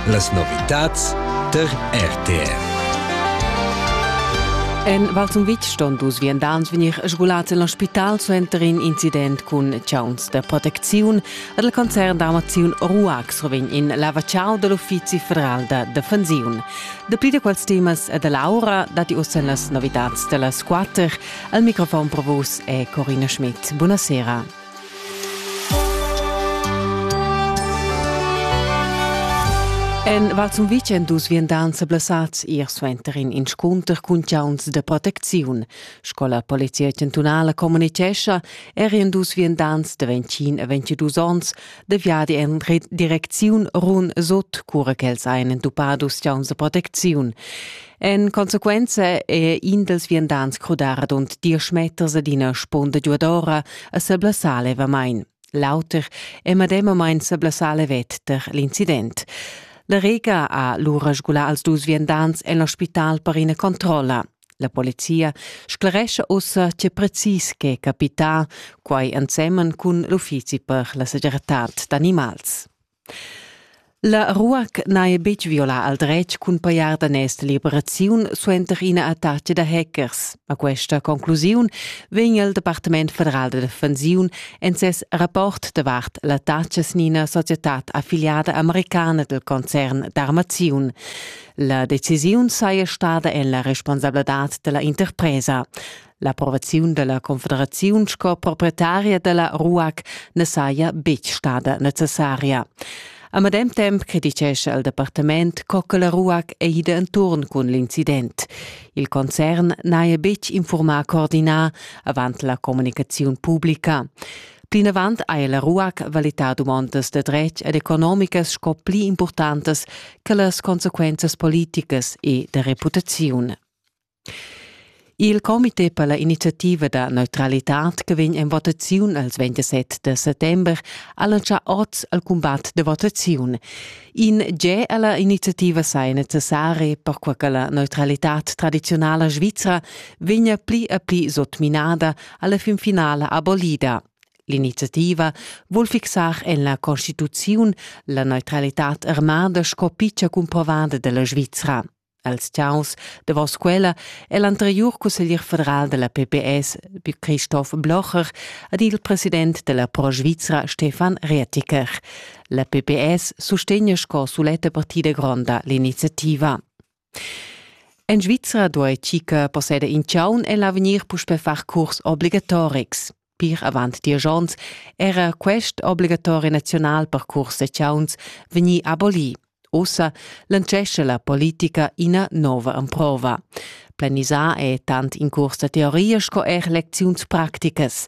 Las novitads tar RTR. En Val Sumvitg ston dus viandants vegnir sgulads en l'ospital suenter in incident cun chauns da protecziun. Ed il concern d'armaziun Ruax revegn in lavachau da l'Uffizi federal da defensiun. Dapli da quels temas e da l'aura datti uss en las novitads da las quatter. Al microfon pro vus è Corina Schmidt. Buonasera. En Val Sun Vicen dus viandants blessads ier suenter in inscunter cun chauns da protecziun. Sco la Polizia chantunala communitgescha, erien dus viandants de 21 a 22 onns de viadi en direcziun run sut, cura ch'els ein entupados chauns da protecziun. En consequenza è in dels viandants crudar adont diesch meters ad ina sponda giuadora a seblassar levamain. L'auter è medemamain seblassar levet ter l'incident. La Rega ha lura sgulà als dus viandants en l'ospital per ina controlla. La polizia sclarescha ussa tge precis che capita, quai ensemen cun l'uffizi per la segirtad d'animals. La ruac n'haja betg violà al dretg cun pajar daners da liberaziun suenter ina attacca da hackers. A questa conclusiun vegn il Departament federal da defensiun en ses rapport davart l'attacca sin ina societad affiliada americana del concern d'armaziun. La decisiun saja stada en la responsabladad della interpresa. L'approvaziun dalla confederaziun sco proprietaria dalla RUAC ne saja betg stada necessaria. A medem temp criticescha il departament co che la RUAC è ida enturn cun l'incident. Il concern n'haja betg informà coordinar avant la comunicaziun publica. Plinavant haja la RUAC valità dumondas da dretg ed economicas sco pli importantas che las consequenzas politicas e da reputaziun. Il comité per la iniziativa da neutralitad che vegn en votaziun els 27 de settember ha lantschà oz al cumbat de votaziun. In ge alla iniziativa sai necessarie per qual che la neutralitad tradizionala svizra vegna pli e pli sotminada alla fin finale abolida. L'iniziativa vuol fixar en la Constituziun la neutralitad armada sco piccia cumprovada della Svizzera. Als tiaus davos quella è l'anteriur cusseglier federal della PPS, Christoph Blocher, ed il president della Pro Svizra, Stefan Reetiker. La PPS sustegna sco suletta partida gronda l'iniziativa. En Svizra duai Cica posseder in chaun e l'avegnir puspè far curs obligatorics. Pir avant diesch onns era quest obligatori naziunal per curs da chauns vegnì abolì. Ussa lancescha la politica ina nova emprova. Planisà è tant in curs da teoria sco er lecziuns practicas.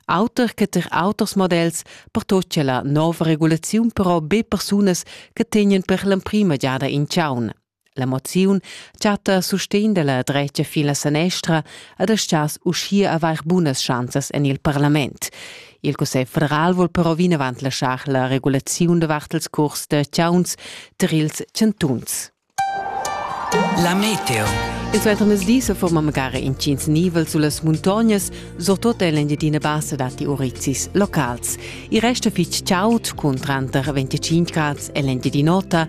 Auter che tar auters models pertoccia la nova regulaziun però be persunas che tegnan per l'emprima giada in chaun. La moziun chatta sustegn dalla dretga fin la sanestra ed astgas uschia avair bunas schanzas en il parlament. Il Cussegl federal vul però vinavant laschar la regulaziun davart ils curs da chauns tar ils chantuns. La meteo. Il suentermezdi se forma magari incins nivel sulle muntognes, soprattutto nell'Engiadina Bassa dati urizis locals. Il resto fitch chaud con tranter 25 gradi e l'Engiadinota,